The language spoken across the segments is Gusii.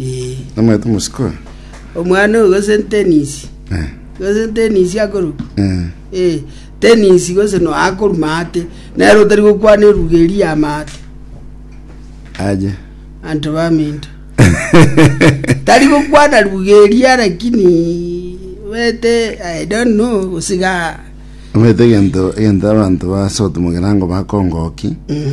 Ee. Namanyete omosiko oyo. Omwana oyo gose ntenisi. Eh. Gose ntenisi akorwa. Eh. Eh, tenisi gose no akorwa maate. Nero otari gokwana eruga eri ya maate. Aje. Anto baminto. Tari gokwana ruga eria lakini bete I don't know gosiga. Omanyete egento egento abanto basote mogerango bakongoki. Mm.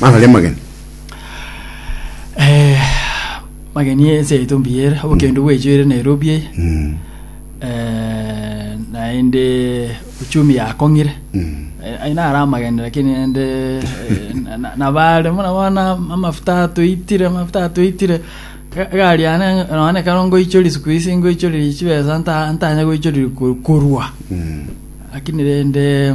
Mararia amageni. Eh, mageni ense yaito mbuya ere obokendo bwechio ere nairobi eye Mm. eh, naende uchumi yakong'ire Mm. Eh, aye nare amageni lakini ende eh, na- na- nabare muna bona amafuta atoitire amafuta atoitire Ga- gari yane none karo ngoichori siku isi ngoichoriri chibesa nta- ntanya goichoriri ko- korwa Mm. lakini rende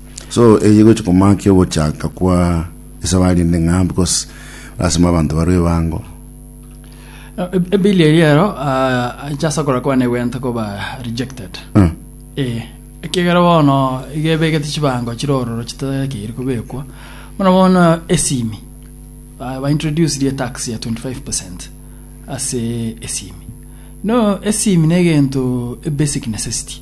So eye gochia komakia ogochaka kwa esabari ende ng'a because lasima abanto barwe ebango. Ebilia eria ero ah, inche ase okora kwane gwenta koba rejected Eh, ee ekiagera bono iga ebegete chibango chire ororo chitakeire kobekwa bono bono esimi ah, baintroduce rie tax ya 25 percent ase esimi no esimi na egento ebasic necessity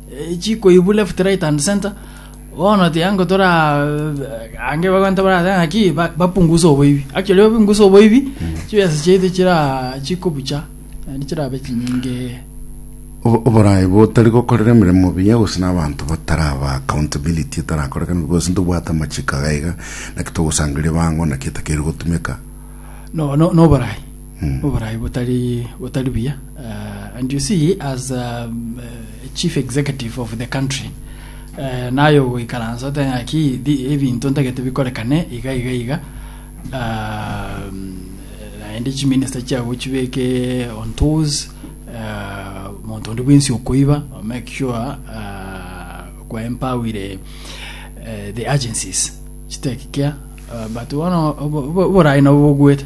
chikoibu left right and center bono tiga ngotora ange bagwanta barate ng'aki ba- bapunguse oboibi actually bapunguse oboibi chibesa chiaito chira chikobucha naende chirabe chinyinge Obo- oboraai botari gokorera emeremo buya gose na abanto bataraba accountability etarakorekana gose ntobwate amachiko agaiga naki togosangeria bango naki etakeire gotumeka no no noborai Oborai botari botari buya uh, and you see as a um, uh, chief executive of the country uh, nayo goikaransa oteng'aki ebinto ntagete bikorekane iga iga iga uh, naende chiminista chiago chibeke on toes uh, monto onde bwensi okoiba make sure uh, kwaempawire uh, the agencies chitekikia uh, but bono oborai nabo bogwete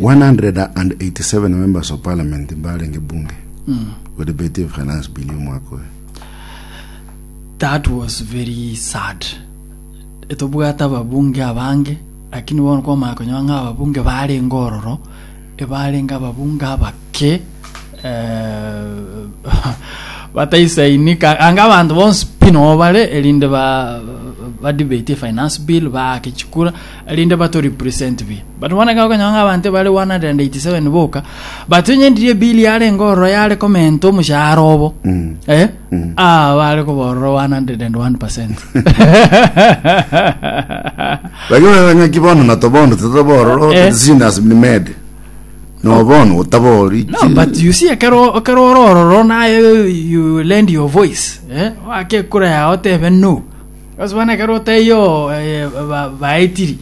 187 members of parliament mbarenge bunge we debate the finance bill omwaka oyo That was very sad. Etobwate ababunge abange, lakini bono kwamanya konyoa ng'a ababunge barenge ororo, ebarenge ababunge abake eh, bataisainika anga abanto bonsi pi noo bare erinde ba badebate finance bill baake chikura erinde bato represent bi but bono ekero okonyora ng'a abanto bare 187 boka but onyendirie bill yarenge ororo yare comment omoshahara obo eh ah bare kobororo 101 percent lakini onye ng'aki bono natobondo titobororo Eh. decision has been made no bono otabori No, but you see, ekero ekero ore ororo naye you lend your voice eh? wake ekura yao tebe no Ase bono ekero otaiyo oo baetiri,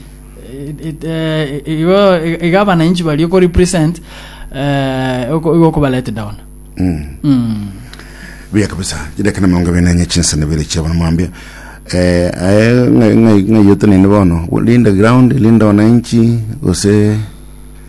igo iga abananchi baria oko represent igo okoba let down. buya kabisa chidaka na mirongo ibere na enye chinsa na bere chia bono mwambia eh, aye ng'ayotenene bono linda ground linda wananchi gose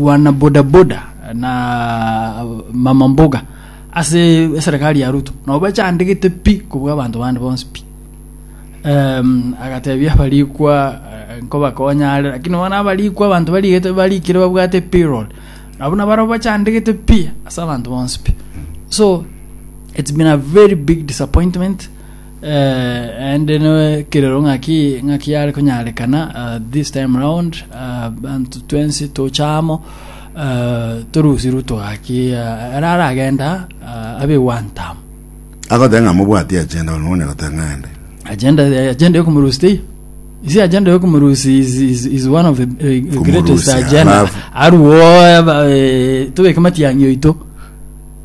wana bodaboda na mama mboga ase eserekari ya ruto nabo bachandegete pi kobua abanto bande bonsi pi um, agatebia abarikwa eh, nkobakonya are lakini bono abarikwa abanto barigete barikire babwate payroll nabo nabaro bachandegete pi ase abanto bonsi pi so it's been a very big disappointment Naende nekerero ng'aki ng'aki yare konyarekana uh, this time round uh, bantu twensi tocha amo uh, torusirwe togaki uh, ara aragenda uh, abe one term agoteba ng'a mobwati agenda bono mone goteba ng'a ende agenda agenda yokomurusi tei isi agenda yokomurusi is, is, is one of the uh, greatest Kumurusi, agenda alafu- aruo eh, tobeke matiang'i oito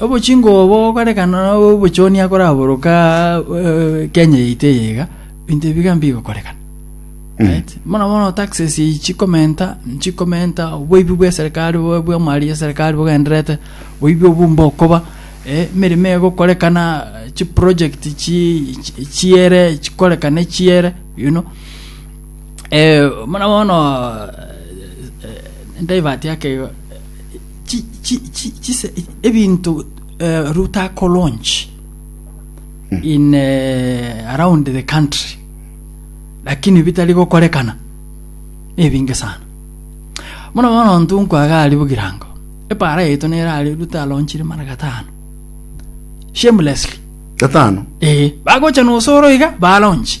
Obochingwa obo okorekana nobochoni akoraboroka Kenya yaito eye iga, binto ebi bigambe bigokorekana. Right? Mono mono taxes eyi chikomenta chikomenta oboibi bwa eserikali bwa- bwa mali ya eserikali bogenderete oibi obu mbokoba eh, emeremo egokorekana chiproject chi- chi- chiere chikorekana echiere you know eh, mono mono eh, eh, divert yake igo chi- chi- chi- chise- ebinto eh, ruto akolaunch in eh, around the country lakini bitari gokorekana nebinge sana muna bono ntu nkwaga ari bogirango epara yaito nere ari ruto alonchire mara gatano shamelessly gatano ee bagocha nosoro iga balonchi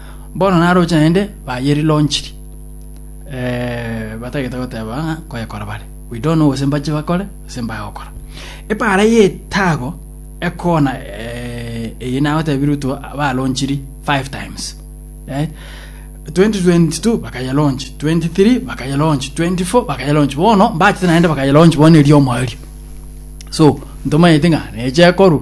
Bono naroche naende bayeri lonchiri eh, batagete goteba ng'a koyekora bare we don't know gose mbache bakore gose mbaye gokora epaara y'etago ekona eh, eye nagotebirwe tu balonchiri five times right? 2022 bakayelonchi 23 bakayelonchi 24 bakayelonchi bono mbachete naende bakayelonchi bono eriomo erio so ntomanyete ng'a neche ekorwa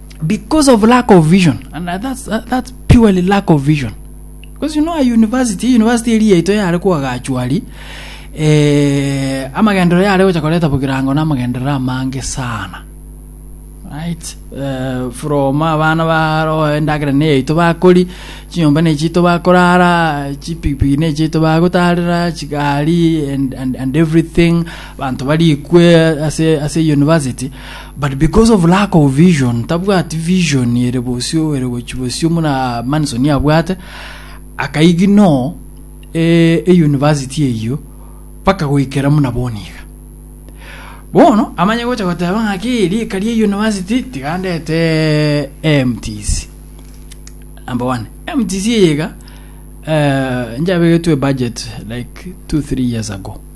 because of lack of vision and that's, uh, that's purely lack of vision because you know a university university eri yaito yare kwagachwari eh, amagenderero yare gocha koreta bogirango na amagenderero amange sana right uh, from abana baro endagera ne yaito bakori chinyomba ne chito bakorara chipikipiki ne chito bagotarera chigari and, and, and everything bantu barikwe ase ase university But because of lack of vision, tabwati vision ere bosio ere gochi bosio muna Manson abwate, akaigi no eh, e university eyio paka goikera muna boniga. Bono amanye gocha goteba ng'aki rika rie university tiga ndete MTC. Number one, MTC eyega eh, njabegetwe budget like 2-3 years ago.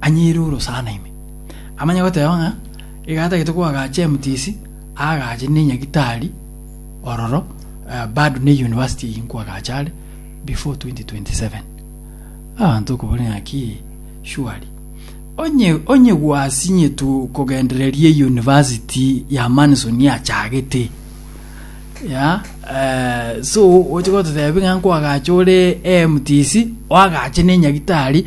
Anyiire orosana ime. Amanye goteeba ng'a iga atagete koagacha emtc, aagache ne nyagitari ororo eh, bado ne university eye nkoagacha are before 2027. Abanto okobori ng'aki surely onye onye gwasinyetu kogendereria university ya Manson yachagete ya eh, so oche gototebi ng'a nkoagacha ore MTC oagache ne nyagitari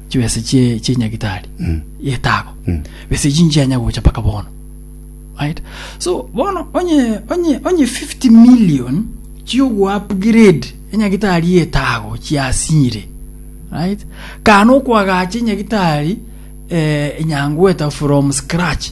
chibesa chie chie nyagitari Mm. yetago Mm. besa echi nchianya gocha paka bono right so bono onye onye onye 50 million chiogo upgrade enyagitari yetago chiasinyire right kana okwagacha enyagitari eh, enyangweta from scratch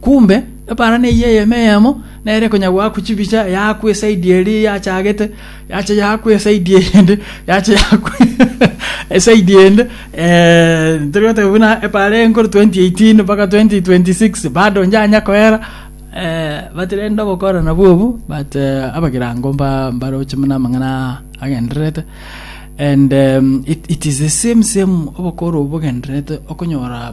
Kumbe eparana eyio eyemo eyemo nere konya goakwa chibicha yaakwa eside eria yachagete, yacha yaakwa eside eyende, yacha yaakwa eside eyende, eh, tori goteba buna epaara enkoro 2018 mpaka 2026 bado njanya koera, eh, but rende obokora nabwo obu, but eh, abagirango mba mbaroche buna amang'ana agendererete, and em, it, it is the same same obokora obo bogendererete okonyora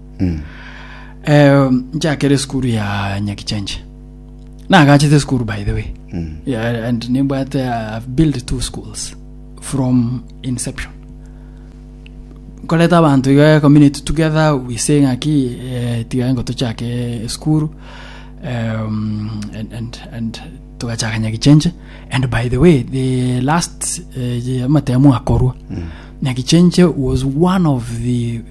Eh, nchakere esukuru ya nyakichenje nagachete esukuru by the way yeah, and nimbwate i've built two schools from inception nkoreta abanto iga community together we say ng'aki eh, tiga ngo tochake esukuru um, and, and, and tugachaka nyakichenje and by the way the last eh, amatemu akorwa nyakichenje was one of the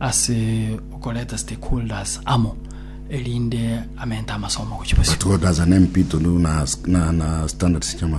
ase okoreta stakeholders amo erinde amente amasomo gochia bosio. Stakeholders nempito na standards chiamasomo.